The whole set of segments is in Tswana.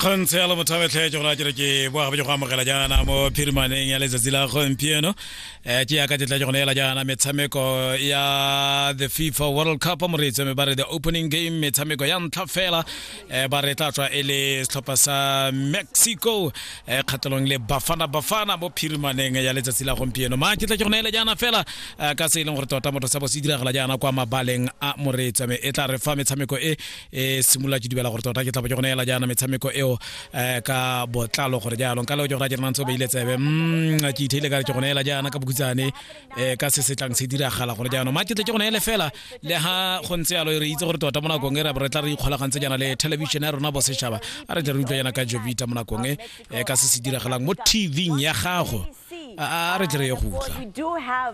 kgonthe ya lebotlhabetlhe ke gona kere ke boa gabe ke go amogela jaana mo phirimaneng ya letsatsi la gompieno um eh, ke yaka tetla ke gone ela jaana metshameko ya the fifa world cup mo re itseme ba re the opening game metshameko ya ntlha fela um ba re tla tswa e le setlhopha sa mexico um eh, kgatelong le bafana bafana mo phirimaneng ya letsatsi la gompieno ma ke tla ke gone ela jaana fela ka se e leng gore tota motho sa bo se diragala jaana kwa mabaleng a moreetsame e tla re fa metshameko e e simolola ke dubela gore tota ke tla bo ke go neela jaana metshameko eo um ka botlalo gore jaanong ka leo ke go ra ke renang tse o beile tsebe mm, ke itheile ka re ke go neela jaana ka bokhutsane um ka se se tlang se diragala gore jaanong ma ke tle ke go neele fela le ha go ntse yalo re itse gore tota mo nakong e re tla re ikgolagantse jaana le television ya rona bosetšhaba a re tle re utlwa jaana ka jovita mo nakong e eh, ka se se diragalang mo tvng ya gago a re tle re ye go utlwa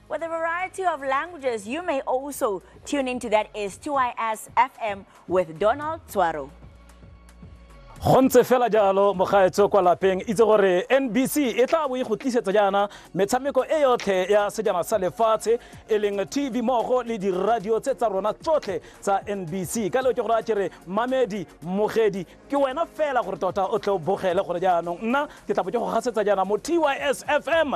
With a variety of languages, you may also tune into that is 2IS FM with Donald Tswaro. go ntse fela jalo mogaetso kwa lapeng itse gore nbc e tla bo e go tlisetsa jaana metshameko e yotlhe ya sejana sa lefatshe e leng tv mogo le diradio tse tsa rona tsotlhe tsa nbc ka leo ke gore a kere mamedi mogedi ke wena fela gore tota o tle o bogele gore jaanong nna ke tla bo ke go gasetsa jaana mo tys fm